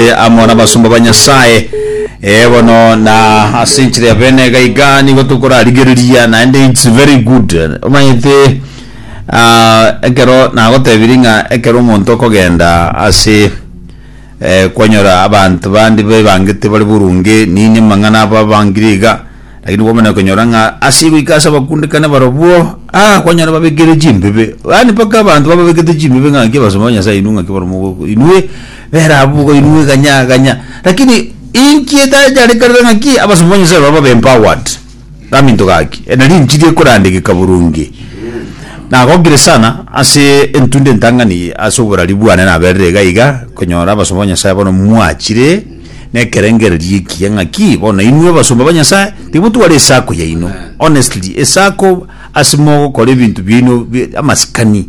Ee, amo nabasomba ba Nyasaye. Ee, bono na ase enchera ya bene iga iga nigo tokorarigereria naende it's very good omanyete ah, ekero nagotebirie ng'a ekero omonto okogenda ase eh, kwanyora abanto bande baebangete bare boronge nini amang'ana abo abangire iga lakini kwamanya konyora ng'a ase goika ase abakundekane barobwo ah, kwanyora babekire chimbebe yaani mpaka abanto bababekete chimbebe ng'a naki abasomba ba Nyasaye inwe ng'aki baromo inwe Bera abwo boka inwe eganya ganya. Lakini inki etacharekanete ng'aki abasomba ba Nyasaye baba babe empowered gaminto gaki? E nari enchiri ekorandegeka boronge. Nagokire sana ase entunda entang'ani eye ase oborari bwane naberire iga iga konyora abasomba ba Nyasaye bono mwachire nekerengererio ekiya ng'aki bono inwe abasomba ba Nyasaye timotware esako yaino honestly esako ase mogokora ebinto biaino bi amasikani.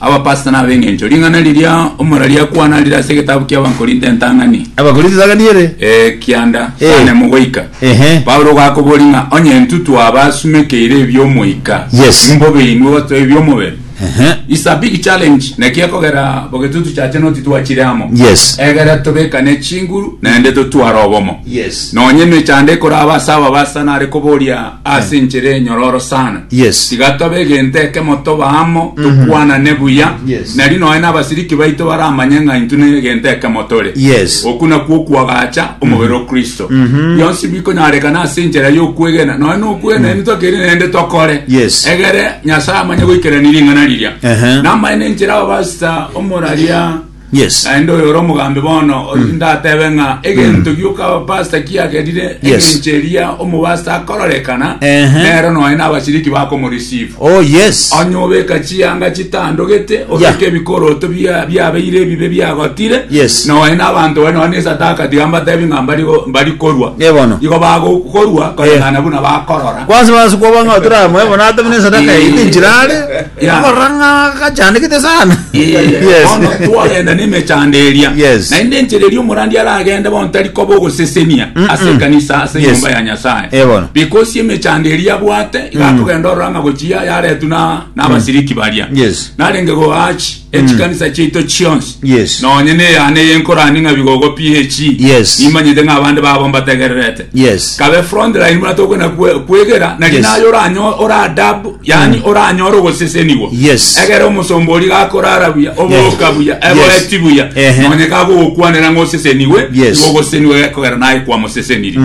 Abapastor na ab'engencho, ring'ana riria omora riakwana rire ase egetabu ki'Abakorinto entang'ani, Abakorinto entang'ani ere. eh, kianda Eh. saa nemo goika. Ehe. Paulo ogakoboria ng'a onye intwe twaba asumekeire ebi'omoika, Yes. imbobe inwe gotoa ebi'omobere. Ehe. It's a big challenge naki ekogera bogetutu chache noti twachire amo Yes. egere tobekane chinguru naende totware obomo Yes. nonye emechando ekoraba ase ababasa nare koboria ase enchera enyororo sana Yes. tiga tobe egento ekemo tobe amo tokwanane buya Yes. nari noe n'abasiriki baito baramanye ng'a intwe ne egento ekemo tore Yes. oku nakwo okwagacha omobere o kristo bionsi bikonyarekana ase enchera y'okwegena noe nokwegena mm. tokeri naende tokore Yes. egere nyasaye amanye goikerania ring'ana riria Ehe. namaene enchera ababasita omoraria Yes. Naende oyo ore omogambi bono ori ndatebe ng'a egento gioka abapasta kiagerire Yes. egencho eria omopasta akororekana Ehe. nero nonya na abashiriki bakomoreceive Oh yes. onye obeka chianga chitandogete Yeah. obeka ebikoroto bia- biabeire ebibe biagotire Yes. nonya na abanto bare nonya na esadaka tiga mbatebi ng'a mbari go- mbari korwa Eh, bono. igo bagokorwa koreng'ana buna bakorora Kwanza basi kwa banga tura mwe bona tabine sadaka Eh. ite nchirare. Erio barora ng'a gachandekete sana. Yes. Bono twagenda nemechando eria Yes. naende enchera eria omorandi aragende bono tari koba ogosesenia ase ekanisa ase Yes. enyomba ya nyasae Eh, bono. because emechando eria abwate iga akogenda orora ng'a gochia yaretwa na- nabasiriki baria Yes. narenge goachi echikanisa chiaito chionsi Yes. nonye neyane eye nkorani ng'a bigogo ph Yes. nimanyete ng'a abande babo mbategererete Yes. kabe frontline buna tokona kwe- kwegera nari Yes. naye oranyo- oradabu yani oranyore ogosesenigwa Yes. egere omosomba ori gakorara buya oboka Yes. buya Yes. egoeti buya Ehe. nonye kagogokwanera ng'a oseseniwe Yes. igo ogoseseniwe gekogera naye kwamoseseniri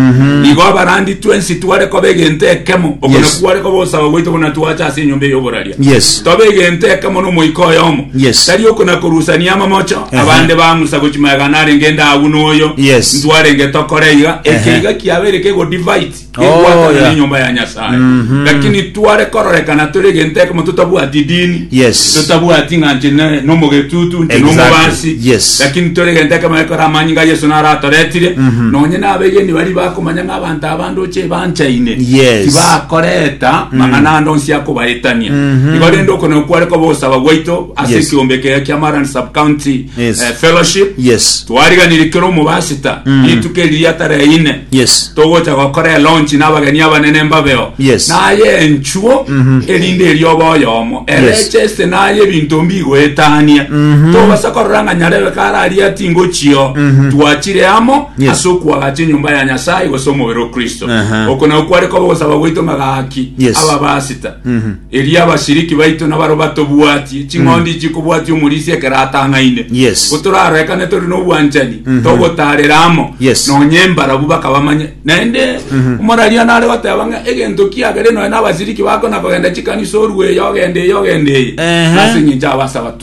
igo abarandi twensi tware koba egento ekemo okona Yes. kware koba osaba gwaito buna twacha ase enyomba ey'oborario Yes. Toba egento ekemo n'omoika oyomo. Yes. Tari okonakorusania amamocho, Ehe. abande bang'usa gochi magega narenge inde agwo noyo. Yes. Ntwarenge tokore iga. Ehe. Eke iga kiabeire kegodivide, Oh, kegwatana yeah. nenyomba ya Nyasaye. Mhm. Lakini tware kororekana tore egento ekemo totabwati edini. Yes. Totabwati ng'a nche ne- nomogetutu, nche Exactly. nomobasi. Yes. Lakini tore egento ekemo ekore amanyinga Yesu naratoretire. Nonye nabegeni bari bakomanya ng'a abanto aba ndoche ebanchaine Yes. tibakoreta mang'ana ande onsi akobaetania igo rende okoneo kware koba ogosaba gwaito ase Yes. ekiombe ekega kia maran subcounty Yes. eh, fellowship yes twariganire kero omobasita rituko eriri atareine yes togocha gokora elonchi n'abageni abanene mbabeo Yes. naye enchuo erinde eri oba oyomo Yes. erecheste naye ebinto mbigoetania tobasa korora ng'a nyarebe kararia tingochio twachire amo Yes. ase okoagacha enyomba ya Nyasae gose omobere o Kristo. Aha. Oko nao kware koba ogosaba gwaito ng'a gaki Yes. ababasita. Mhm. Erio abashiriki baito nabaro batobwatie, ching'ondi chikobwatia omorisia ekero atang'aine. Yes. Ko toraroekane tore n'obwanchani, Mhm. togotaarera amo, Yes. nonye mbarabu bakabamanye. Naende omorariano nare goteba ng'a egento kiagere nonya nabashiriki bakona kogenda chikanisa orue eye ogende eye ogende eye. Ehe. Nase eng'encho abasaba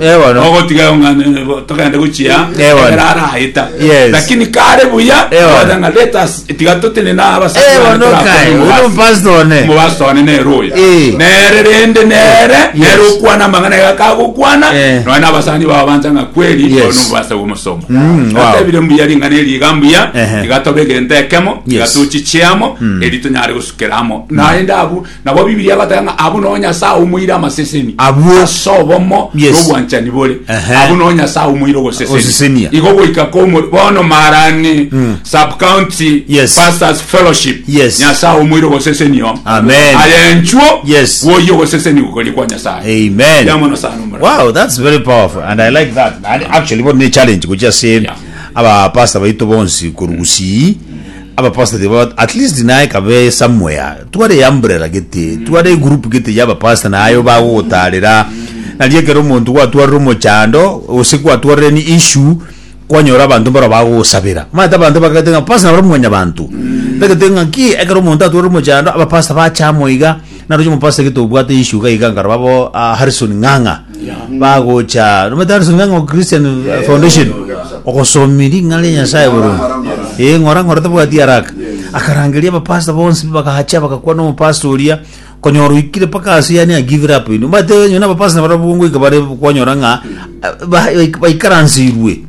Eh, bono. ogotiga omwana eh, togende gochia Eh, bono. ekero arayeta Yes. lakini kare buya Eh, bono. okonya ng'a let us tiga totine na abasani Eh, bane bono torakore kae, omobasi. uno pastor one. omobasi one neroya Eh. nere rende nere Yes. nere okwana amang'ana iga kagokwana Eh. nonya abasani bao bancha ng'a kweri Yes. ono omobasa bw'omosomo Mm, wow. atebire mbuya ring'ana eri iga mbuya Ehe. iga tobe egento ekemo iga Yes. tochichiamo eri tonyare gosukera amo naende abu Nabo Bibilia egoteba ng'a abwo noo Nyasae omoire amaseseni Abwo. ase obomo Yes. na obwanchani bore. Ehe. Abwo noo Nyasae omoire ogosesenia. Ogosesenia. Igo goika komo bono marani sub-county Yes. pastors fellowship. Yes. Nyasae omoire ogosesenia omo. Amen. Aye enchuo Yes. gwoyia ogoseseni gokoria kwa Nyasae. Amen. Ya mono sana omorero. Wow, that's very powerful and I like that. And actually bono ne challenge gochia se Yeah. aba pastor baito bonsi korugusii Aba pastor tiba at least naye kabe somewhere tware umbrella gete tware group gete yaba pastor nayo bagogotarera narie ekero omonto gwatwarire omochando ose gwatwarire ni issue kwanyora abanto mbaro bagogosabera mate abanto bakagete ng'a pastor nabare mwanyabanto tagete ng'a ki ekero omonto atwarire omochando aba pastor bacha amo iga Naroche mopasta gete obwate issue iga iga nkaraba bo ah, Harrison Ng'ang'a bagocha nomete Harrison Ng'ang'a o Christian eh, Foundation ogosomi ring'ana ria Nyasaye boronge ee ng'ora ng'ora tabwati haraka akarangeria abapasta bonsi bakahacha bagakwa nomopasta oria konyora oikire paka ase yani I give it up ino mbate nyona abapasta barabwo ngoika bare kwanyora ng'a ah, ba- baikaransirwe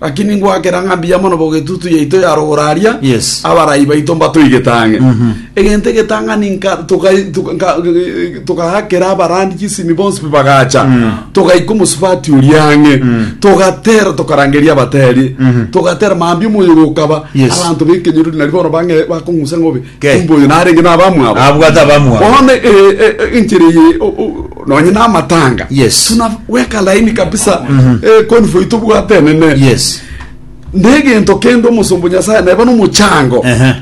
Lakini ngwakera ng'a mbuya mono bogetutu yaito ya rogoro aria Yes. abarai baito mbatoigete ang'e egento egetang'ani nka- tukai- tuka- nka- togakera abarandi chisimi bonsi pi bagacha togaika omosubati oria ang'e togatera tokarangeria abateri togatera mambia omoyo gokaba Yes. abanto bekenyoro nari bono bang'e bakong'usa ng'obe Ke. Kumbe oyo narenge nabamwabo. Abwate abamwabo. Bono e- e- e- enchera eye o- o- nonye namatanga. Yes. Tunaweka laini kabisa. Eh, convoy tobwate enene. Yes. Negento kende omosombo Nyasaye neba nomochango. Ehe.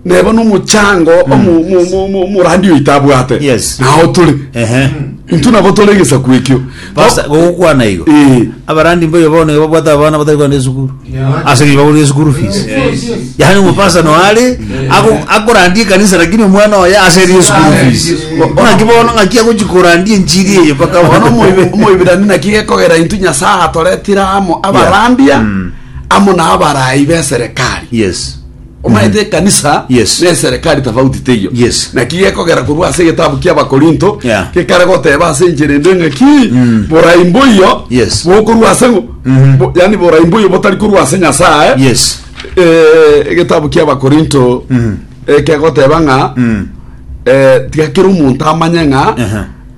Neba nomochango omu- mu- mu- mu- omorandi oyo itabwate. Yes. Nao tore. Ehe. Intu nabo tore egesaku ekio. Pasta, Bo- gogokwana igo Eh. abarandi mboyo bono igo babwate abana batari kogenda esukuru Yeah. ase ng'encho bagorire school fees Yes, yes. yaani omopasa noare ako- akorandia ekanisa lakini omwana oye ase erie school Ah, fees yes. ng'aki bono ng'aki agochi korandia enchiri eye mpaka bono omoibe omoibirani naki gekogera intu nyasaye atoretire amo abarambia amo na abarai b'eserekari yes Omanyete mm-hmm. ekanisa yes. neserekari tofauti teiyo yes. naki gekogera korwa ase egetabu kia bakorinto yeah. gekare goteba ase enchera ende ng'aki mm. borai mboiyo yes. bokorwa ase mm -hmm. bo, yani borai mboiyo botari korwa ase nyasaye yes. e, eh, egetabu kia bakorinto mm. ekegoteba ng'a mm. e, eh, tigakera omonto amanye ng'a uh -huh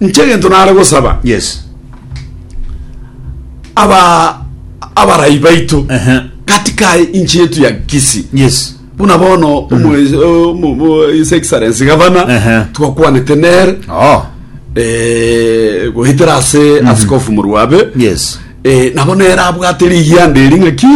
Inche egento nare gosaba Yes. aba abarai baito Ehe. gati kae inchi yetu ya Kisii Yes. buna bono omo- omo- omo- his excellency gavana Ehe. twakwanete nere Oh. eh, goetera ase asikofu moruabe Yes. eh, nabo nere abwate rigianda eri ng'aki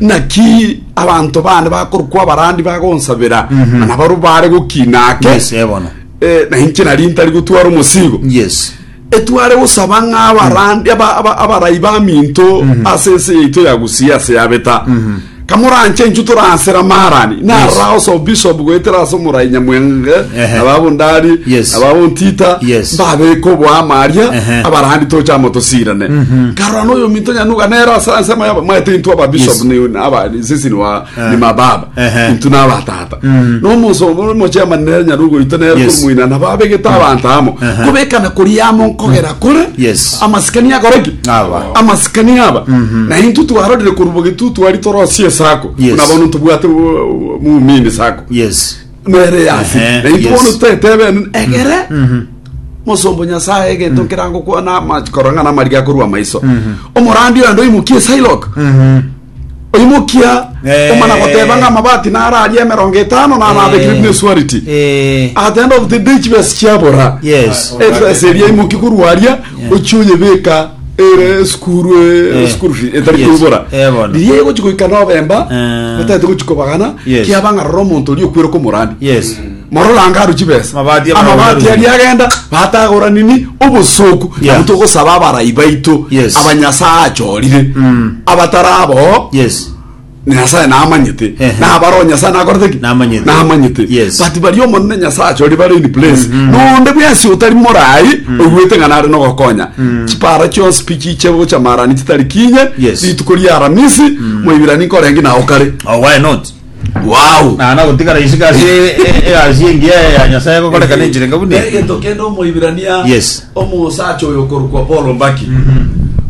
naki abanto bane bakorokwa abarandi bagonsabera mana baro bare gokina ake Yes, eh, bono. Eh, na inche nari ntari gotwara omosigo Yes. etware gosaba ng'a abarandi aba- aba- abarai baminto ase ense yaito ya gusia ase yabeta kamoranche inchu toransera marani narao so bishop goetera ase omorai nyamwenge Ehe. ababundari Yes. ababuntita Yes. mbabeka oboama aria Ehe. abarandi tocha amo tosirane karora noyo minto nyanuga nera ase ase maya- maete intwe aba bishop Yes. ni aba sisi ni wa ni mababa Ehe. intwe na abatata Mm. na omosomba ore omochemani nere nyare ogoita nere Yes. korimoina na babegete abanto amo Aha. kobekana kori amo nkogera kore Yes. amasikani akoreki Aba. amasikani aba na intwe twarorire korubo getu twari torosi esako Yes. na bono tobwate bu- muumini sako yes nere yasi Ehe, na intwe yes. bono tetebene egere mosombo nyasaye egento nkerango kwana amakorang'ana amariga korwa amaiso omorandi oyo ndoimokie silok Oimokia Eh. omana goteba ng'a amabati naro aria emerongo etano naro Eh. abekire buna esuariti Eh, atenda obuti nde chibesi chiabora yes. ebesa eria imoki korwa aria ochia oyebeka ere esukuru Eh. esukuru fi etari Yes. koibora Eh, bono. riria egochi goika nobemba Eh. batagete gochi kobagana Yes. kiaba ng'a rora omonto oria okwere komorani Yes. Mororanga aru chibesa Amabati abarabwo amabati narungu. aria agenda batagora nini obosoku Yeah. nabo togosaba abarai baito Yes. abanyasaye achorire Mm. abatarabo yes nyasaye namanyete Ehe. nabaro nyasaye nakorete ki Namanyete. namanyete Yes. but bari omonene nyasaye achori bare in place nonde bwensi otari morai oigwete ng'a nare nogokonya chipara chionsi pi chiche gocha marani chitari kinye Yes. rituko ria aramisi moibirani nkorengi nago kare oh why not Wauu. Naende agotigara isiko ase e- e- egasi engiya ya Nyasaye egokoreka ne enchera enga buna eyi. Egento kende Omoibirania Yes. omosacha oyo okorokwa Paul Mbaki.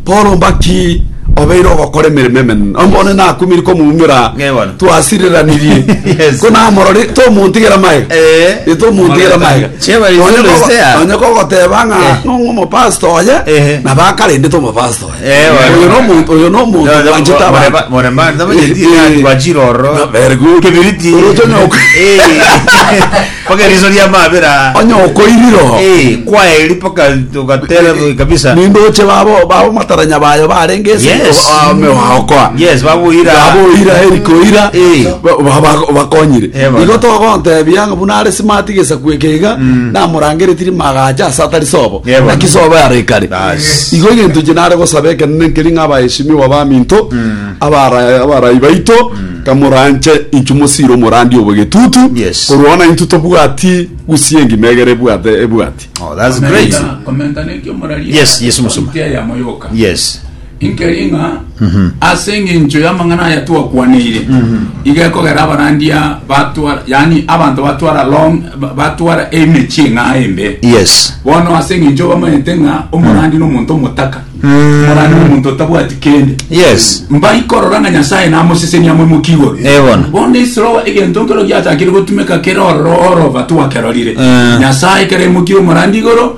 Paul Mbaki obeire ogokora emeremo emenene. Ombone nakumiri komuumera Ng'e bono. twasireranirie. Yes. Ko namorori tomontigera maega. Eh. Ye tomontigera maega. Cheba Onye izulo kogo- sea. onye kogoteba ng'a Ehe. nong'o omopastor oye Ehe. na bakarendete omopastor. Eh, Oyo wari- nomonto- oyo nomonto No, no, bwanchete more- abantu. more- more man, no, Eh, yeti, eh, ya, twachire ororo. no, very good. Kebiriti. Oroche nyoko. Eh. Paka eriso ria mabera. onye okoiriro Eh, kwaeri paka tukatera kabisa. nindoche babo babo mataranya bayo barenge ase Yes. ame waokoa Yes, babuira. baboira erikoira Eh. ba- ba- ba- bakonyire Eh, bana. igo togontebia ng'a buna are smart gesakueke iga namorangeretiri magacha ase atari sobo Yebo. Naki sobo yaro ekare. Bas. Igo egento inche nare gosaba ekenene nkeri ng'a abaeshimiwa abaminto, abara- abarai baito, kamoranche inchu mosiire omorandi obo getutu, Yes. korwa ona intwe tobwati gusii engima egere ebwate ebwati. Oh, that's great. Komenta- komenta neki omorari Yes, yes, Musuma. Omotia yamo yoka. Yes. Nkeri ng'a ase engencho y'amang'ana aya twakwaneire, iga ekogera abarandia batwara, yani abanto batwara long, ba- batwara emechie ng'a embe. Yes. Bono ase engencho bamanyete ng'a omorandi n'omonto omotaka, omorandi n'omonto otabwati kende. Yes. mbaikorora ng'a nyasaye namosesenia moimoki igoro Eh, bono. bono esiro egento nkero giachakire gotumeka kere ororo orova twakerorire Eh. nyasaye kere imokire omorandi igoro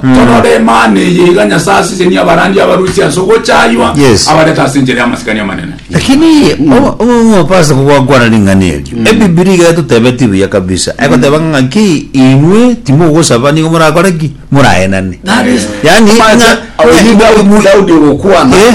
Torora Emana eye iga Nyasae asesenie abarandia abarusia ase ogochaywa, Yes. abarete ase enchera y'amasikani amanene. Lakini o- o- opasa kogwakwana ring'ana erio ebibiri iga etotebetie buya kabisa egoteba ng'aki inwe timogosaba nigo morakore ki moraenane That is- yani Omanyete, ng'a- abaminto abwo Daudi ogokwana. Eh.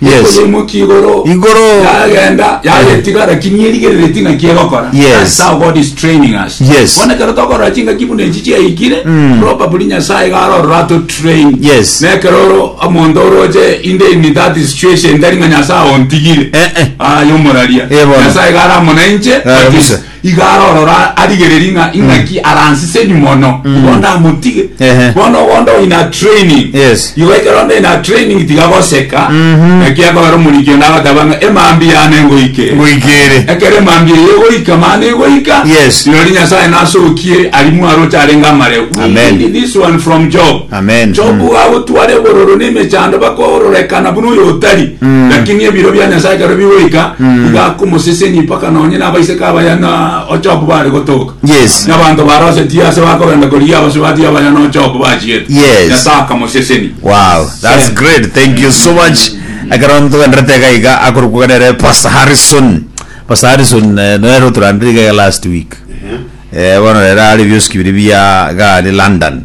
Yes. Ekoyeimokia igoro. Igoro. Yagenda, yagetiga, lakini erigerereti ng'aki egokora. Yes. That's how God is training us. Yes. Bono ekero tokorora chingaki buna echi chiaikire, probably Nyasaye iga arorora ato train. Yes. Na ekero oro omonto oroche in the in that situation, tari ng'a Nyasaye ontigire. Eh, eh. Ah, yomoraria. Eh, bono. Nyasaye iga aramona inche, but Arabisa. is- Iga arorora arigererie ng'a ing'aki aransise nyuma ono igo ndamotige Ehe. bono ogo ndo in a training Yes. igo ekero ndo in a training tiga goseka naki akogera omoriki onde agoteba ng'a emambia yane ngoike Ngoikere. ekero emambia eye egoika mani egoika Yes. rirorio nyasae nasokie ari mwaro ocharenge amare We Amen. need this one from job Amen. Jobu gagotwara ebororo na emechando bakororekana buna oyo otari, lakini ebiro bia Nyasae ekero bigoika, iga akomosesenia mpaka nonye na abaiseke abaya na Jobu bare gotoka. Yes. Na abanto ba Lose tiyo ase bakogenda korigia abasubati abaya na Jobu bachiete. Yes. Nyasae akamosesenia. Wow, that's Sen. great. Thank you so much. Ekero ntogenderete iga iga akorokwa nere Pastor Harrison. Pastor Harrison eh, nere oturandire iga iga last week. Eh, bono rero are bioski biri bia gari London.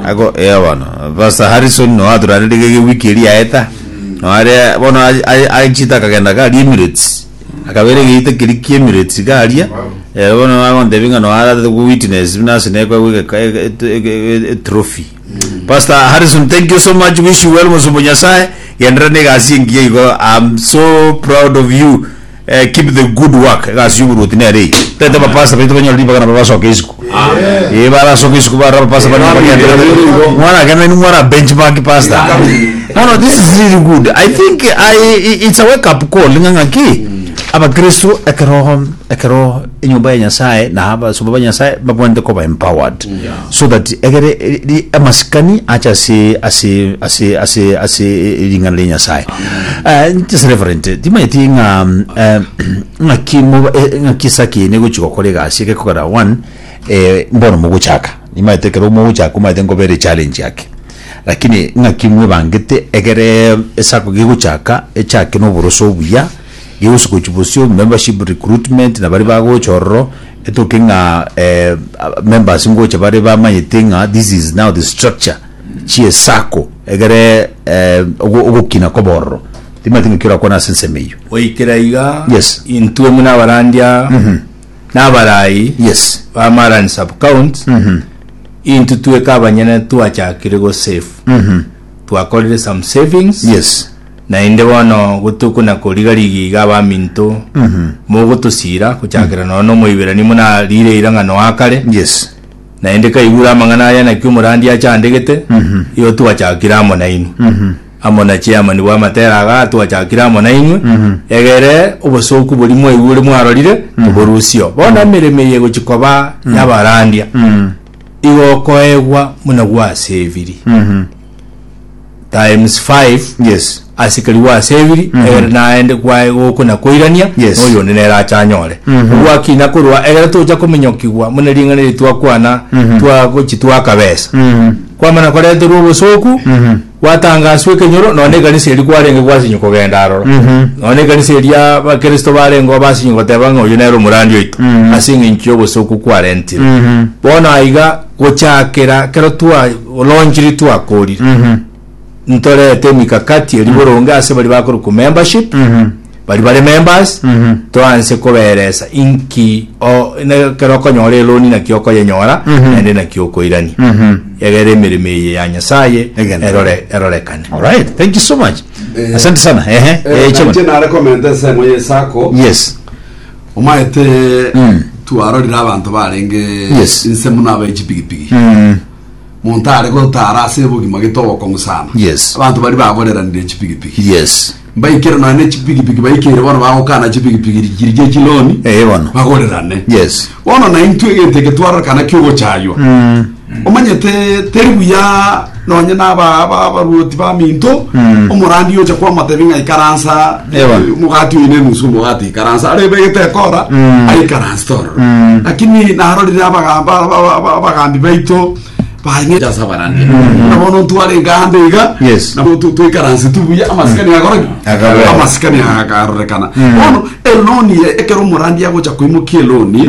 Ako eh bono Pastor Harrison no aturanderete gege wiki eri yaeta no are bono aye aye achiete akagenda iga aria Emirates akabera egeita keria kia Emirates iga aria eh bono agontebia ng'a no aratete go witness buna ase naye kwegwa egeka ege eto ege e- etrophy. Pastor Harrison thank you so much wish you well mosomba o Nyasaye genderera na egasi engiya igo am so proud of you. Eh, keep the good work egasi y'oboruoti nere eye tete abapasta baito banyore ribaga nabo basoke isiko ee barasoka isiko barora abapasta bari nabo bagenda mwana agenda ni mwana benchmark pastor no no this is really good i think I, i- it's a wake up call ng'a ng'aki abakristo ekeroho ekeroho enyomba ya Nyasaye na abasomba ba Nyasaye babwanete koba empowered Yeah. so that egere ri- ri- amasikani acha ase ase ase ase ase ring'ana ria Nyasaye Eh, just reverend timanyeti ng'a mm, eh, ng'a kimo eh, ng'a kisa kine gochi gokora egasi eke kogera one eh, mbono mogochaka nimanyete kero mogochaka omanyete nkobere challenge yake lakini ng'a kimwe bangete egere esako gegochaka echake noboroso obuya Gigosio gochia bosio, membership recruitment, na baria bagocha ororo, etoke ng'a members ngocha bare bamanyete ng'a this is now the structure chi'esacco egere ogokina kobe ororo. Timanyeti ng'aki orakwane ase ensemo eyio. Goikera iga, intwe buna abarandia na abaraai ba Marani Sub-count, intwe tweka abanyene twachakire go save. Twakorire some savings. Naende bono gotukuna koriga rigiiga abaminto, mogotosiira, gochakera noro n'Omoiberania muna riire eirang'ano aa kare, Yes. naende kaigure amang'ana aya naki omorandia achandegete, igo twachakire amo nainwe. Amo na chairman bw'amatera aga twachakire amo nainwe, egere obosooku boria mwaigure mwarorire toborusio. Bono emeremo eye egochi koba y'abarandia, igo okoegwa buna gwaseviri. times five Yes. asikeri gwasebiri egere naende kwaye gokwe na koirania Yes. na oyonde nere achanyore ogwakina korwa egere tocha kominyokigwa muna ring'ana eri twakwana twagochi twakabesa kwamana koreterwa obosoku gwatangaswa ekenyoro nonye na ekanisa eri kwarenge gwasinyi kogenda aroro nonye na ekanisa eri abakristo barengeo basinyi goteba ng'a oyo nere omorandi oito ase eng'encho y'obosoku kwarentire bono aiga Gochakera kero twa lonchiri twakorire Mhm. ntorete emikakati eri boronge ase bari bakore ku membership Mhm. bari bare members Mhm. toanse koberesa inki o- ne- kero okonyora eloni naki okoyenyora Mhm. naende naki okoirania Mhm. egere emeremo eye ya nyasaye Egene. erore erorekane Alright, thank you so much. Asante sana. Ehe. Eh, Eh, Chairman. nare komenta ensengo ye sako Yes. Omaete twarorire abanto barenge Yes. inse muno abae chipigipigi Mm. monto are gotara ase obogima gete obokong'u sana Yes. abanto bari bagoreranire chipigipigi Yes. mbaikere nonya ne chipigipigi baikeire bono bagokana chipigipigi richirie chiloni Eh, bono. bagorerane Yes. bono naintwe egento eke twarorokana kiogochaywa Mm. Omanyete teri buya nonye naba aba abarwoti baminto omorandia ocha kwamatebi ng'a ikaransa Ewa. eh, omogati oine nusu omogati ikaransa are ebegete ekora aikaransa tororo lakini narorire abagamba aba- aba- aba- abagambi baito baing'eja sabarani nabono ntware eganda iga Yes. nabo tu- tuikaranse tubuya amasikani akoraki Akabera. amasikani akarorekana bono eloni ekero omorandia agocha koimokia eloni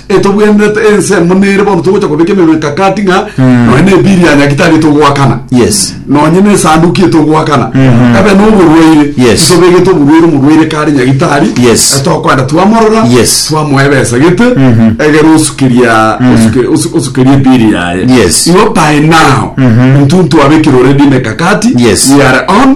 etobwenerete ense emo nere bono togocha kobeka emenwa ekakati ng'a nonya na ebiri ya nyagitari etogoakana Yes. nonya na esanduki etogoakana ebe na oborwaire Yes. tobegete oborwaire omorwaire kare nyagitari Yes. eh, tokwenda twamorora Yes. twamoa ebesa gete egere osukeria osuke- osu- osukeria ebiri yaye Yes. igo by now intwe ntwabekire already emekakati Yes. we are on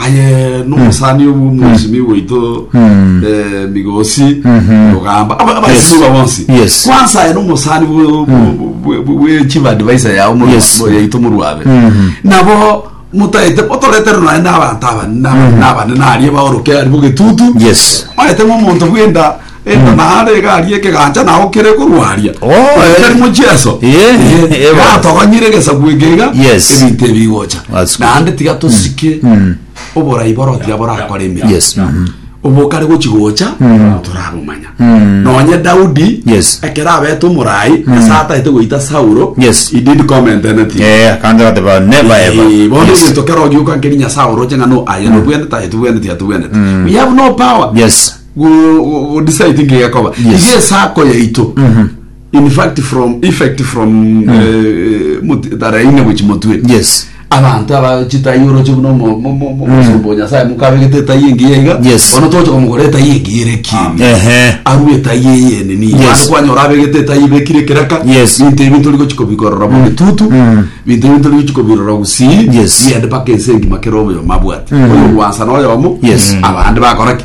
Aye nomosani obu omwesimi waito Mm. eh, migosi Mhm. ogamba aba- abasimi Yes. ba bonsi Yes. kwansa aye nomosani bwe- bwe- bwe- bwe- bwechief advisor yao moru- Yes. mo- yaito moruabe Mhm. nabo motaete otoretere naye nabanto aba naba- nabane narie baoroke ari bogetutu Yes. maete ng'omonto bwenda Enda Mm. naare iga aria ekegancha nao kere korwa aria. Oh, Korwa eh. kerimo Jesu. Eh, Eh, eh, bono. Natogonyire egesaku eke iga. Yes. Ebinto ebi bigocha. That's good. Naende tiga tosike Mm. oborai boro tiga borakore emeremo. Yes. mhm. obokare gochigocha torabumanya Mm. nonye daudi Yes. ekero abete omorai ase ataete goita saulo Yes. he did comment in it Eh, akanje bateba never ever. Eh, bono Yes. egento kero ogioka nkeri nyasaye oroche ng'a no aye nobwenete aye tobwenete aye tobwenete we have no power Yes. go- go decide nki gekoba Yes. iga esako yaito in fact from effect from eh, mut- tara ine gochi motwe yes abanto aba chitai oroche buna omo- mo- mo- mo- mosomba onyasaye mukabegete etai engiya iga Yes. bono toche komogora etai engiya ere ekieni ehe arue etai eyene ni Yes. bande kwanyora abegete etai ibekire keraka Yes. binto ebi tori gochiko bikorora mu bitutu binto ebi tori gochiko birora gusii Yes. yende paka ense engima kera oboyoma bwate oyo gwansa na oyomo Yes. abande bakora ki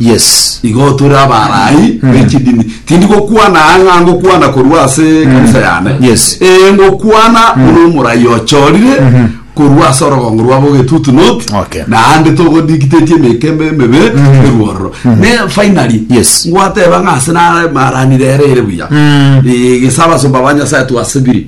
Yes. Igo tore abarai bechidini. Tindi gokwana aa ng'a ngokwana korwa ase ekanisa yane. Yes. Ee ngokwana buna omorai ochorire korwa ase orogongo rwabo ogetutu not Okay. naende togodikitetie emekembe emebe eruororo. Ne finally Yes. ngwateba ng'a ase nare maranire ere ere buya. Ee gese abasomba ba Nyasaye twasibiri.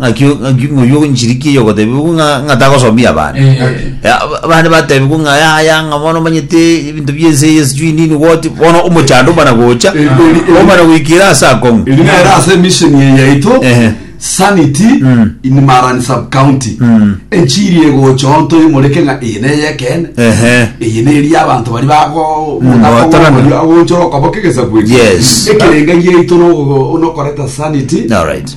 ng'aki o- ng'aki ng'oyio ogonchiriki eyi ogotebigwa ng'a ng'a tagosomia abana Eh, Eh, ab- abande batebigwa ng'a yaya ng'a bono omanyete ebinto bia ense eye sijui nini goti bono omochando omana gocha Eh, eh, eh. omana goikera ase akong'u Eri nere ase mission eye yaito Ehe. sanity Mm. in Marani sub county Mm. enchiri egocha onto imoreke ng'a eye neye ekene ehe eye neri abanto bari bago batarana. agonchora okoboka egesabwe Yes. ekerenga yaito nokoreta sanity All right.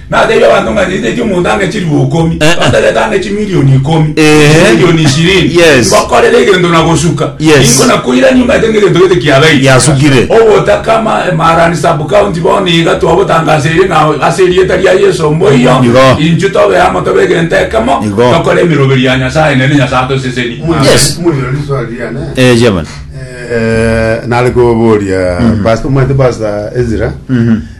Nateebie abanto ng'a nyititie omonto ang'e chilifu ikomi, Eh, eh. nonterete ang'e chimilioni ikomi, Eh. chimilioni ishirini, Yes. ngokorera egento na gosuka, Yes. ninko nakoirania omanyete ng'a egento gete kiabeire. Yasukire. Obotakama Emarani sub-county bono iga twabotangaseire na ase erieta ria Yeso omoiyo Igo. inchu tobe amo tobe egento ekemo Igo. tokore emeroberi ya Nyasaye nere Nyasaye atoseseni Yes. Mwirori swali riane. Eh, chairman. Eh, nare koboria pastor omanyete pastor Ezra.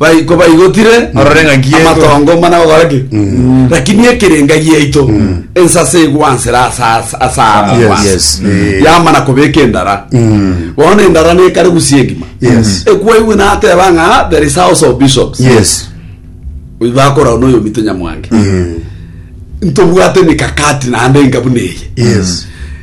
bai- kobaigotire Orore ng'a nki ekora. amatongo mana gokora ki lakini ekerenga giaito ensase egwansera asa- asara Yes. kwansa. Yes. Eh. yamana kobeka endara bono endara nekare gusia engima Yes. ekwaigwe nateba ng'a "Ah, there is house of bishops yes oyo bakorao na oyo mito nyamwange ntobwate mikakati naende engabuna eye yes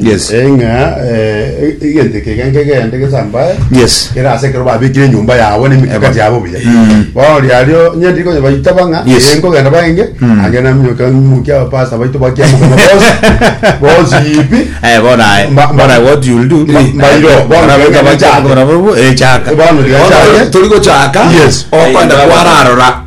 Yes. Eh, ng'a eh, e- egento eke geke ngegende gesambae Yes. kere ase ekero babekire enyomba yabo na emekaka Eba. yabo buya Mm. bono riario onye ndiri konya baita bang'a Yes. eh, nkogenda baenge Mm. ange naminyoka ng'imokia abapasa baito bakiamoka bonsi bonsi ipi Eh, bona aye. Ma- ma- Bona what you'll do. Ma- mairo, bona Bona wega bachaka, bachaka. bona bo- eh, chaka. Bona wega Bono chaka. turi gochaka Yes. okwenda kwararora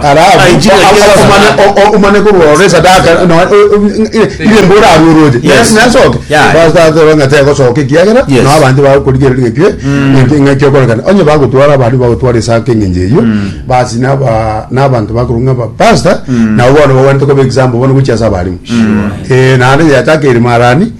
Alafu omane korora esadaka irembo orarwe oroche nasoke batateba ng'a tegosoka ekiagera nao abanto bagokorigereri ng'ekio ng'ekio okorekana onye bagotwara abandi bagotwara esanka eng'encho eyio basi nabanto bakorwa ng'a abapastor nabo bono bagwenerete koba example bono gochia ase abarimu naende yachaka ere marani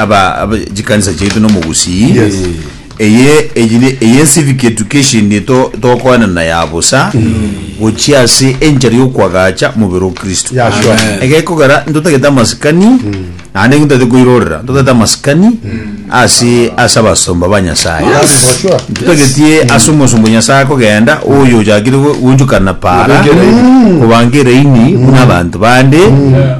aba aba- chikanisa chiaito nomogusii Yes. eye eye ne- eye civic education to tokoenana ya bosa gochia ase enchera yokwagacha mobere o kristo Yeah, sure. Amen. egekogera ntotagete amasikani naende ntotagete koirorera ntotagete amasikani ase ase abasomba ba nyasaye That is for sure. tutagetie ase omosombo nyasaye akogenda oyo ochakire go- gonchukana para Obangeraini. obangeraini buna abanto bande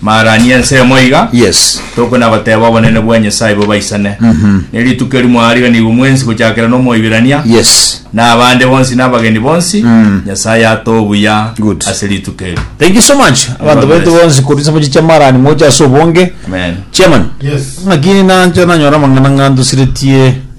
Maarani y'ensemo iga, Yes. tokona goteba obonene bwa Nyasae bobaisane. Ne rituko eri mwaariganigwe mwensi gochakera n'Omoibirania, Yes. na abande bonsi na abageni bonsi, Nyasae atoe obuya Good. ase rituko eri. Thank you so much. Abanto God baito bless. bonsi korwa chisabochi chia Marani moche ase obonge. Amen. Chairman. Yes. Ng'aki nancha nanyora amang'ana ng'antusiretie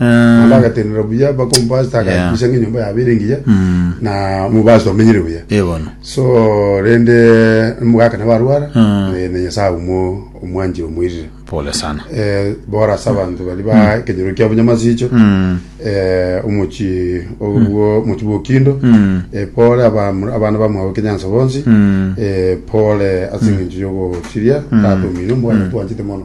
Naende agatenena buya mpaka omopastor agakikisha ng'a enyomba yabo ere engiya Mm. na omopastor omenyire buya Eh, bono. so rende omogaka nabo arwara Mm. eh, na nyasaye aumwe omwanchire omoirire Pole sana. Eh, bora ase abanto bari ba ekenyoro kiabo nyamasicho Mm. eh, omochi obwo omochi bwokindo Mm. eh, pole abam- abana bamwabo kenyanso bonsi Mm. eh, pole ase eng'encho yogochiria tatomino mbwana twanchete mono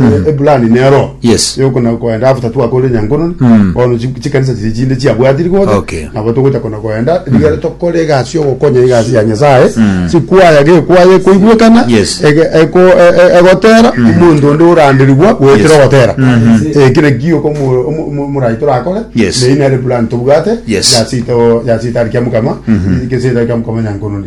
eh, ebulani nero Yes. yokona koenda after twakorire nyankononi Mm. bono chi- chikanisa chiri chinde chiabwatiri gose Okay. nabo togocha kona koenda rigere tokore egasi yogokonya egasi ya nyasaye chikwaya gekwaya ekoigwekana Yes. ege- eko- e- e- egotera omonto onde oranderigwa goetera Yes. ogotera Eh, kire kio komorai torakore Yes. neyi nere plan tobwate Yes. yasito yasito ari kia mukama gesito ari kia mukama nyankononi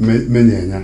me- menyenya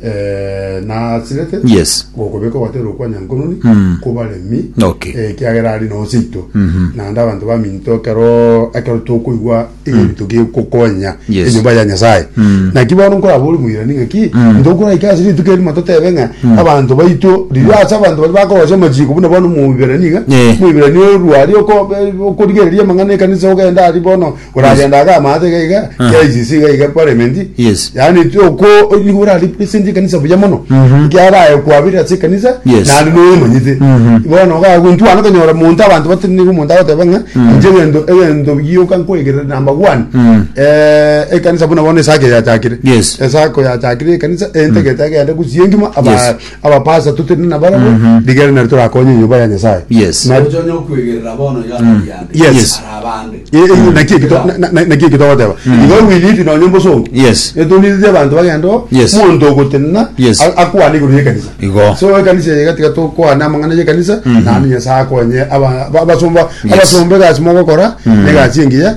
eh, nasirete Yes. gokobeka ogwaterwa kwa nyankononi Mm. kobaremi Okay. eh, ekiagera ari nonsi ito Mhm. naende abanto baminto ekero ekero tokoigwa egento togekokonya Yes. enyomba ya nyasaye Mm. naki bono nkorabori moirani ng'aki Mm. ntokoraika ase rituko erimo totebe ng'a abanto baito riria ase abanto bari bakorosia amachiko buna bono moibirani iga Eh. moibirani orwari oko- okorigereria amang'ana ekanisa ogenda ari bono koragenda aga amaate iga iga Ah. KICC iga iga parliament Yes. yani toko nigo ora represent kanisa buya mono Mhm. kiaraye kwabira ase kanisa Yes. nandi nomanyite Mhm. bono ga guntwana konyora muntu abantu batini nigo muntu agoteba ng'a inche gento egento gioka nkoigere number 1 Mm. eh ekanisa buna bono esake yachakire Yes. esako yachakire ekanisa entegete agende gusie ngima aba Yes. abapasa tutinde nabarabwo Mhm. rigere nari torakonye enyomba ya nyasaye Yes. Na- Ocha onye okwegerera bono iga atari yande. Yes. Yes. Ara abande. Eh, eh, naki eki to- na- na- na- naki eki togoteba iga owiniti nonye mbosongo Yes. etonititi abanto bagenda o Yes. monto ogotenena Yes. a- akwane igoro yekanisa Igo. so ekanisa eye gatiga tokwane amang'ana yekanisa nandi nyasaye akonye aba- ba- abasomba Yes. abasomba egasi mogokora negasi engiya